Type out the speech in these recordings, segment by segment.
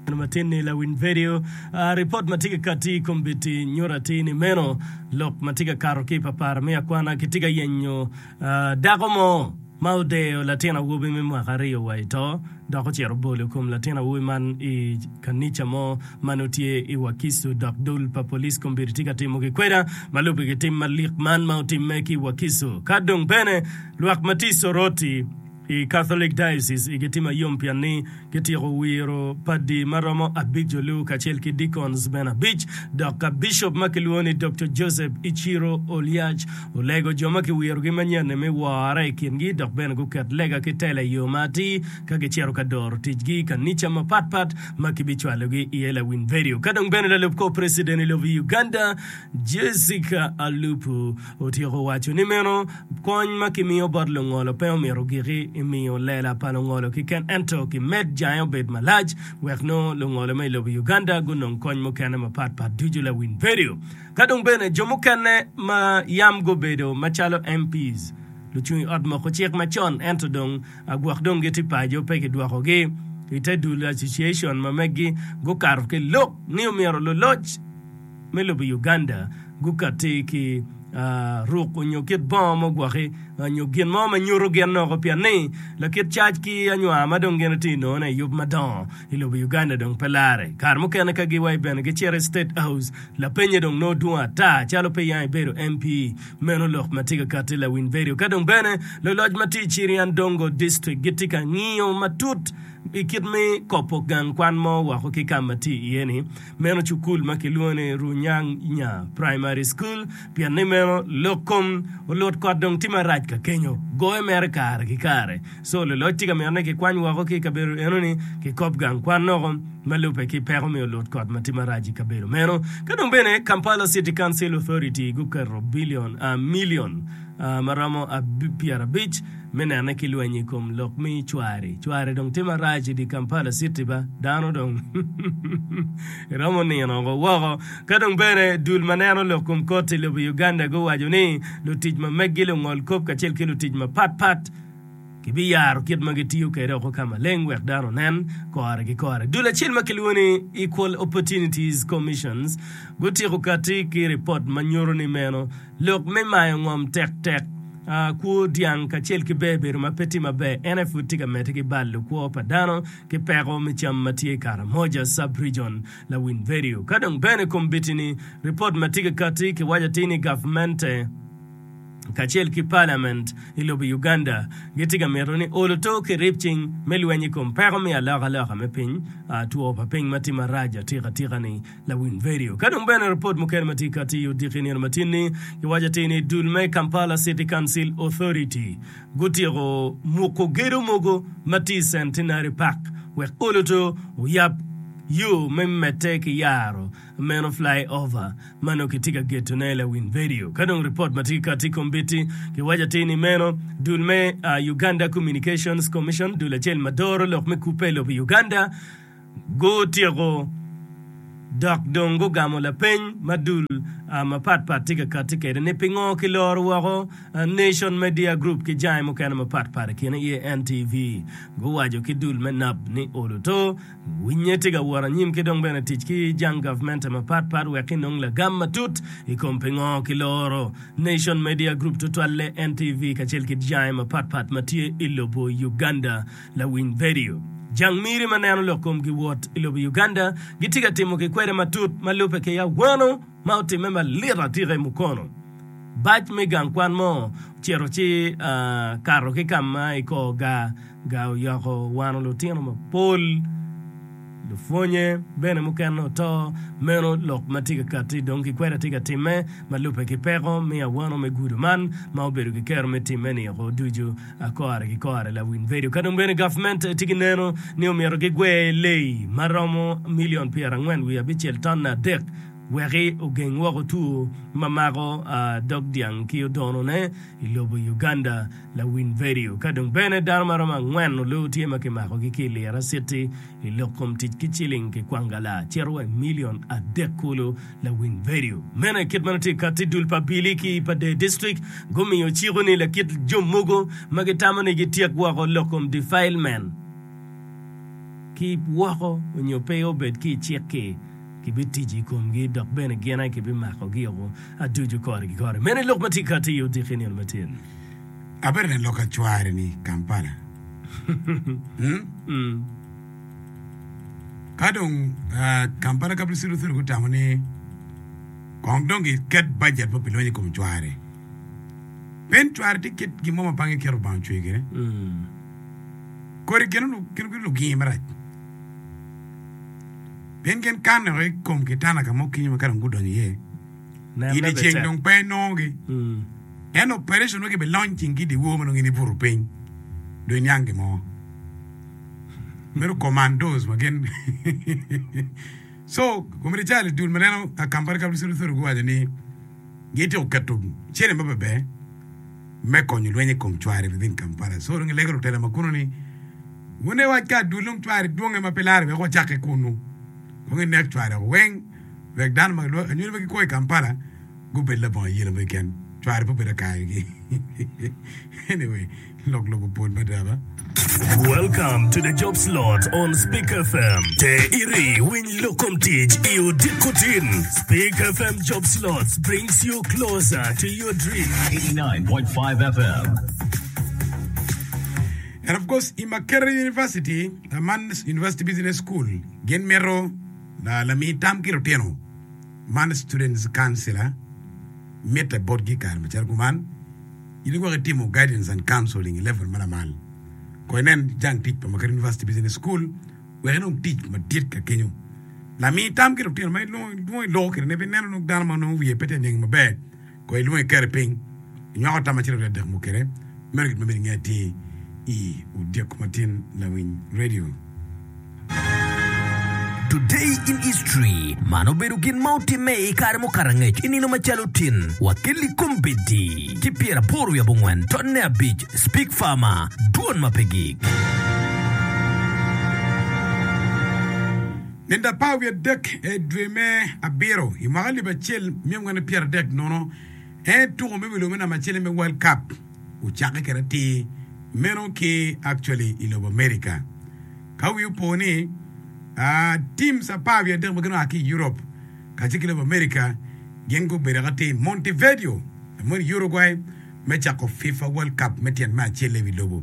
Neno matin ni lawiny vidio. Ripot ma tye ka katti i kombeddi nyuto atir ni meno lok ma tye ka kato ki i papara me akwana. Kitye ka yenyo dako mo ma odeyo latin awobi me mwaka aryo wa i to dok ocito obolo kom latin awobi man i kanica mo ma nongo tye i Wakiso dok dul pa police kombeddi tye ka timo gikweda ma lubbe ki tim malik man ma otimme ki i Wakiso. Ka dong bene lwak ma tye i Soroti I Catholic Diocese, igi tye mayom pien ni gityeko wiro padi ma romo abic-olu kacel ki deacons bene abic, dok ka bicop ma kilwongo ni Doktor Joseph Ichiro Oliac olego jo ma kiwirogi manyen-ni me wore i kingi dok bene guket lega ki tela i yo ma atir ka gicito ka doro ticgi i kanica mapatpat ma kibicwalogi iye lawiny vedio. Ka dong bene lalup kor preciden i lobo Uganda, Jessica Alupo otyeko waco ni meno Kony ma kimiyo bot lungolo pe omito giki i miyo lela pa lungolo keken ento kimed jange obed malac wek nongo lungolo ma i lobo Uganda gunong kony mukene mapat pat ducu lawiny vedio ka dong bene jo mukene ma yam gubedo macalo MPs, lucung i ot moko cik macon ento dong gwok dong gitye paco pe kidwoko gi i te dul association ma megi gukato ki lok ni omyero luloc. me lobo Uganda gukatti ki ruk onyo kit bongo mo gwaki onyo gin mo ma nyuto gin noko pien ni lakit cac ki anywar ma dong gin tye nono i yub madongo i lobo Uganda dong pe lare. Kare mukene ka gi wai bene gicito i State House lapenye dong nongo dwong ata calo pe yang ibedo MP meno lok ma tye ka katti lawiny vedio. Ka dong bene loloc ma tye i Chirian Dongo District gitye ka ngiyo matut i kit me kopo gang kwan mo woko ki ka ma tye iye ni. Meno cukul ma kilwongo ni Runyang Nya Primary School pien ni meno lok kom olut kot dong tye marac ka kenyo. Goye mere kare ki kare. Co luloc tye ka mito ni kikwany woko ki i kabedo enoni ki kop gang kwan noko ma lubbe ki peko me olut kot ma tye marac i kabedo meno. Ka dong bene Kampala City Council Authority guketo bilion, milion, ma romo pyerabic, Me nene ki lweny i kom lok mi cwari. Cwari dong tye marac idi Kampala city ba. Dano dong iromo nino oko woko. Ka dong bene dul ma neno lok kom koti lobo Uganda guwaco ni lutic ma meggi lungol kop kacel ki lutic ma pat pat ki bi yaro kit ma gitiyo kede oko ka maleng wek dano onen kore ki kore. Dul acel ma kilwongo ni Equal Opportunities Commissions gutiko kati ki ripot ma nyuto ni meno Lok me mayo ngom tektek. Kwo dyang kacel ki ber bedo ma pe tye maber, ene pud tye ka medde ki balo kwo pa dano ki peko me cam ma tye i Karamoja Sub-Region, Lawinverio. Ka dong bene i kombitini, ripot ma tye ka kati kiwaco atir ni gavmente kacel ki paliament i lobo Uganda gitye ka mito ni olo to ki rip cing me lweny i kom peko me alokaloka me piny, two pa piny ma tye marac atikatika-ni. Lawiny Vedio. Ka dong bene ripot mukene ma tye ka tiyo odiki i nino matin-ni giwaco atir ni dul me Kampala City Council Authority gutyeko muko gedo mogo ma tye i Centenary Park wek oluto oyab yo me medde ki yaro meno Fly Over ma nongo kitye ka getone. Lawiny Vedio. Ka dong ripot ma tye ka tic kombeddi giwaco atir ni meno dul me Uganda Communications Commission, dul acel ma doro lok me kubbe i lobo Uganda, gutyeko dok dong gugamo lapeny ma dul mapat pat tye ka kati kwede ni pingo kiloro woko Nation Media Group ki jange mukene mapat pat i kine aye NTV guwaco ki dul me nap ni olo to winye tye ka wot anyim ki dong bene tic ki jang gavmente mapat pat wek ki nong lagam matut i kom pingo kiloro Nation Media Group tutwalle NTV kacel ki jange mapat pat ma tye i lobo Uganda Lawiny Vedio. Jang miri ma neno lok komgi wot i lobo Uganda gitye ka timo ki kwede matut ma lubbe ki awano ma otimme malit atika i Mukono. Bac me gang kwan mo ocito ci kato ki ka ma i kor gar oyoko wano lutino mapol. Lupwonnye bene mukene oto, meno lok ma tye ka katti dong ki kwede atye ka timme ma lubbe ki peko me awano me gudo man ma obedo ki kero me timme niko ducu a kore ki kore. Lawiny bedo ka dong bene gavment tye ki neno ni omyero gi gwer leyi ma romo million pyera angwen wiye abicel tonne adek weki ogeng woko two ma mako dog dyang ki odono ne i lobo Uganda. Lawiny Vedio, Ka dong bene dano ma romo angwen nyo loo tye ma kimakogi ki i liro aciti i lok kom tic ki ciling kikwangala, cito wa i milion adek kulu. Lawiny Vedio, Meno aye kit ma nongo tye katti. Dul pa Bili ki pa Dee District gumiyo ciko ni lakit jo mogo ma gitamo ni gityek woko lok kom defilement ki woko nyo pe obed ki i cik-ki, kibitijo i komgi dok bene gin aye kibimakogi oko aducu korgi kore. Meno aye lok ma tye katti i odiki nino matyen. Abedo lalok acwari ni Kampala. Hmm? Ka dong ah, Kampala Capital City Authority gutamo ni kong dong giket bajet ma pilonyo i kom cwari. Pen cwari tye kit gin mo ma bangi keto bang cwe kene. Hmm. Kodi gin lu- gin gin lugingi marac. Pien gin kanne i kom kitana ka mo kinyo ma ka dong gudonyo iye. I dyeceng dong pe enongogi, ento opereconwa gibelony ceng ki i dyewor ma nongo in ibuto piny dong iniang gin mo. Meno commandos ma gin. so komiti cal i dul ma neno akambari ka bisodo sodo giwaco ni gitye oketo cene ma bebe me konyo lweny i kom cwari within Kampala. So dong ilege lutela ma kuno ni wune wac ka dul dong cwari dwonge ma pe lare wek wacakke kunu. Dong inek cwari weng. wek dano ma kilwongo anyuto pe gikwo i Kampala gubed labongo ayela mo keken, cware pe obedo akayo gi anyway lok lobo pol mada ba. Welcome to the job slot on Speak FM. Te iri winy lok kom tic i odiko tin. Speak FM job slots brings you closer to your dream. 89.5 FM. And of course, i Makerere University, uh, Man's University Business School, gin mito Lami tam ki lutino man Students Councilor mitte botgi i kare macalo kuman. In iwek itimo Guidance and Counseling i level ma lamal, kono inen jang tic pa Makere University Business School wek inong tic madit ka kenyo. Lami tam ki lutino ma ilwongo i lok kine pe ineno dano ma wiye pe tye ka niang maber. Kono ilwongo ikeri piny, inywako tam acel wiye adek mukene, meno gin ma myero inge atir i odyeko matin lawiny redio. Today in History, Man obedo gin ma otimme i kare mukato angec i nino macalo tin wa ki Likombeddi ki pyeraboro wiye abongwen tonne abic, Speke Farmer, dwon ma pe gik. Nino apar wiye adek i dwe me abiro i mwaka alip acel mia angwen ki pyera adek nono en tuko me wilo me namba acel me World Cup ocakke kede atir meno ki actually i lobo America. Ka wi opo ni uh, teams apar wiye adek ma gin oa ki i Europe kacel ki lobo America gin gubedo ka tye i Montevideo, Uruguay me cako FIFA World Cup me tyen me acel i wi lobo.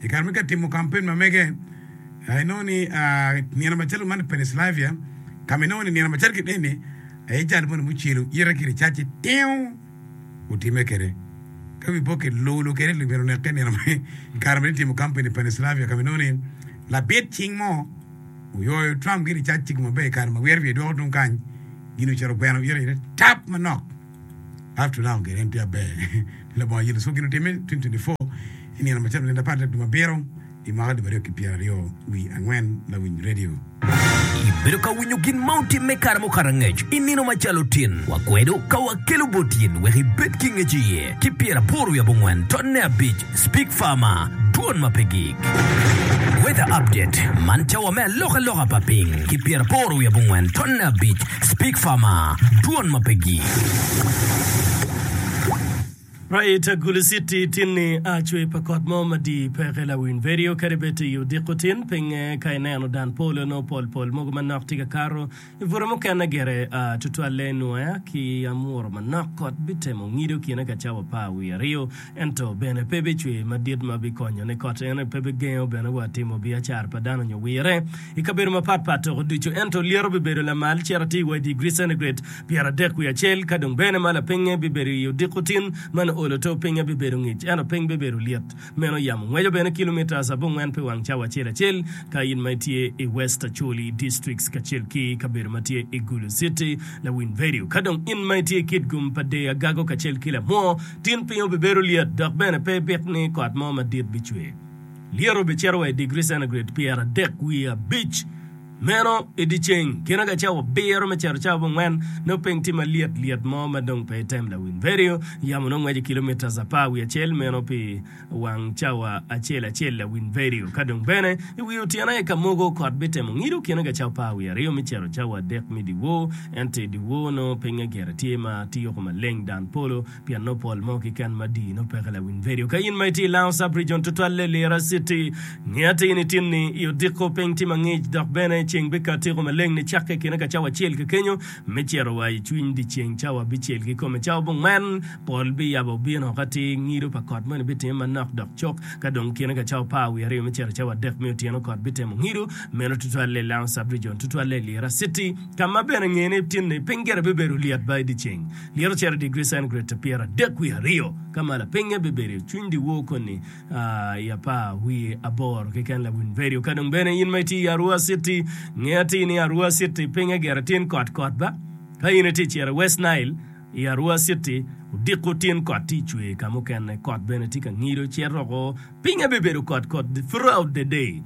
I kare ma kitye ka timo kampen ma mege, inongo ni nino macalo man i Pennsylvania, ka ma inongo ni nino macalo kit eni aye jal moni mucelo ite ki ricacci tingo otimme kwede. Ka wiyi pe oket lolo kwede ni myero oneke i kare ma itimo kampen i Pennsylvania ka ma inongo ni labit cing mo oyoyo Trump ki ricacci maber i kare ma wiro wiye dwoko tung kany, gin ocito ogweno ite tap manok. I have to now get in pia ber ni labongo yelo cuk gin otimme 2024 inino macalo nino apar dek dwe mabiro i mwaka alip aryo ki pyera aryo wi angwen lawiny radio. Ibedo ka winyo gin ma otimme kare mo kara ngec i nino macalo tin wakwedo ka wakelo bot in wek ibed ki ngec iye ki pyera aboro wi abongwen totne abic Speak Farmer, Dwon ma pe gik. Weather Update, Man cawa me alokaloka pa piny ki pyeraboro wiye abongwen tonne abic. Speak Farmer, Dwon ma pe gik. Right Agulu City, Tinni a cwer pa kot mo madii peke lawiny vedio kadi bed to i odiko tin, pinge ka ineno dan polo nongo pol pol mogo manok tye ka kato. I bute mukene gire tutwalle Nuaya ki Amura manok kot bitemo ngido kine ka cawa par wiye aryo, ento bene pe bicwer madit ma bikonyo ni kot ene, pe bigengo bene wa timo biacara pa dano nyo wirre i kabedo mapat pat toko ducu. Ento lyeto bibedo lamal cito atir wa i digri centigrade pyeradek wiye acel, ka dong bene ma lapingnge bibedo i odiko tin ma nio olo to pingnge bibedo ngic ento piny bibedo lyet. Meno yam ngweco bene kilomitas abongwen pi wang cawa acel acel ka in ma itye i West Acholi Districts kacel ki kabedo ma tye i Gulu City, Lawiny Vedio. Ka dong in ma itye i Kitgum pa Dei Agago kacel ki Lamwo, tin piny obibedo lyet dok bene pe ibik ni kot mo madit bicwer. Lyet obicito wa i digri centigrade pyeradek wiye abic. Meno i dye ceng gin ka cawa abiro me cito cawa abongwen, nongo piny tye ma lyet lyet mo ma dong pe item lawiny redio. Yamo nongo ngweco kilometres apar wiye acel meno pi wang cawa acel acel lawiny redio. Ka dong bene i wi otyeno aye ka mogo kot bitemo ngido gin ka cawa apar wiye aryo me cito cawa adek me dyewor, ento i dyewor nongo pingnge gire tye ma tiyoko maleng dan polo Pien nongo pol mo kiken ma dii nongo peke lawiny vedio. Ka in ma itye i Lango Sub-rijon tutwalle Lira Citi, nge atir ni tinni i odiko piny tye mangic dok bene ceng bikato tyeko maleng ni cakke i kine ka cawa acel kekenyo me cito wa i cwiny dyeceng cawa bicel ki kome cawa bongwen pol biyabo bino ka ti ngido pa kot moni bitime manok dok cok ka dong kine ka cawa par wiye aryo me cito i cawa adek me otyeno kot bitemo ngido meno tutwalle i Lango Sub-rijon tutwalle Lira Citi ka ma bene nge ni tinni piny gire bibedo lyet ba i dyeceng Myero ocer i digri centigrade pyeradek wiye aryo, ka malo pinye bibedo i cwiny dyewor koni i apar wiye aboro keken. Lawiny Vedio, ka dong bene in ma itye i Arua City, nge atir ni Arua City pinye gire tin kot kot ba? Ka in itye i ciro i West Nile, i Arua City odiko tin kot tye cwer i ka mukene, kot bene tye ka ngido cito oko, pinye bibedo kot kot throughout the day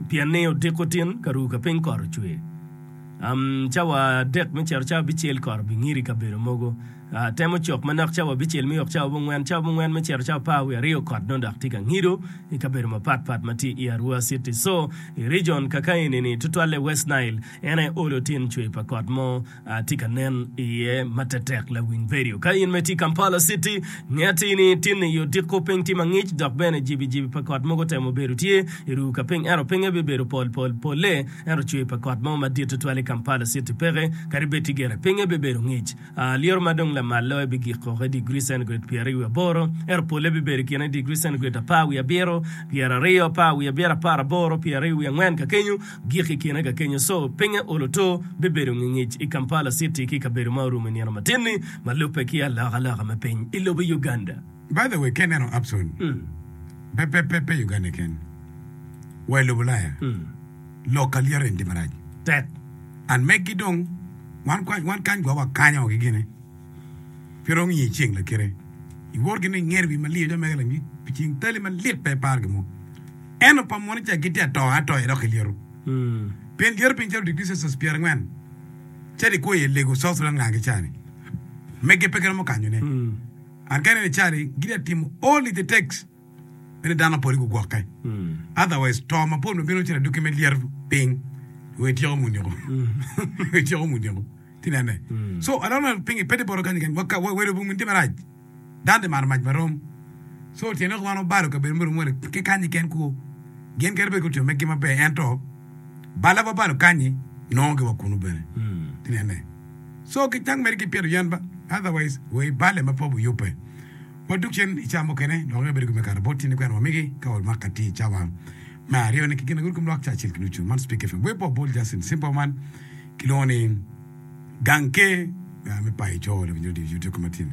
pien ni odiko tin ka ru ka piny kot ocwer. Cawa adek me cito cawa abicel kot obingido i kabedo mogo. Temo cok manok cawa abicel me yok cawa abongwen. Cawa abongwen me cito cawa apar wiye aryo kot dong dok tye ka ngido i kabedo mapat pat ma tye i Arua citi. Co, i region kaka eni-ni, tutwalle i West Nile, en aye olo tin cwer pa kot mo tye ka nen iye ma tetek lawiny bedo. Ka in ma itye i Kampala citi, nge atir ni tinni i odiko piny tye mangic dok bene jibi jibi pa kot mogo temo bedo tye i ru ka piny ento pinge bibedo pol pol polle. Ento cwer pa kot mo madit tutwal i Kampala citi peke, kadi bed tye gire. Pinye bibedo ngic. Lyero ma dong lamal loyo bigik woko i digri centigrade pyeraryo wiye aboro, ento polle bibedo i kine digri centigrade apar wiye abiro, pyeraryo, apar wiye abiro, apar aboro, pyeraryo wiye angwen ka kenyo, gik i kine ka kenyo. So, pinye olo to bibedo ngingic i Kampala citi ki i kabedo ma orumo i nino matin-ni ma lubbe ki alokaloka me piny i lobo Uganda. By the way, ka ineno Abson, pe pe pe pe Uganda keken, wa i lobo Ulaya, lok kalyet en tye marac. Tek. And megi dong, wan kwa- wan kany gwa wakanyo gi gine. Pe iromo ngiyo ceng lakite. Iwor gine ingeri wi maliyo jo mege langi pi ceng tali malit pe ipar gimo. Eno pa moni ca gitye atoyo atoya dok kilyeto. Pien lyeto piny calo degree Celsius pyera angwen. Cadi kwo iye lego South Sudan ngaa ki cani. Mege pe giromo kanyone. Ageno ni Charlie gitye ka timo all it takes me ni dano pwod gugwokke. Otherwise to ma pwod ma bino cito adwoki me lyeto piny wi ityeko munyoko. Wi ityeko munyoko. Ti nene. So I don't know pingi pe ti boro kany kany. Wa wa welo bung tye marac. Dano ti maro mac marom. So tyen lok man obalo kabedo muromo wele ki kanyi ken kwo. Gin kadi bed ki otimo meggi maber ento bala wabalo kanyi nongo gi wa kunu bene. Ti nene. So ki cak mere ki pyeto yen ba, otherwise we ibale ma pwop oyubbe. Wa duk cen ica mukene lok aye bedo gin me kato bot tyen ikwena wa migi ka wa mako atir ica wa me aryo ni ki gin agur kom lwak ca acel ki nucu. Man Speak FM web wa bol Justin Simple man ki lwongo ni gang ker me payo coo lok inyuto dye youtube koma tin.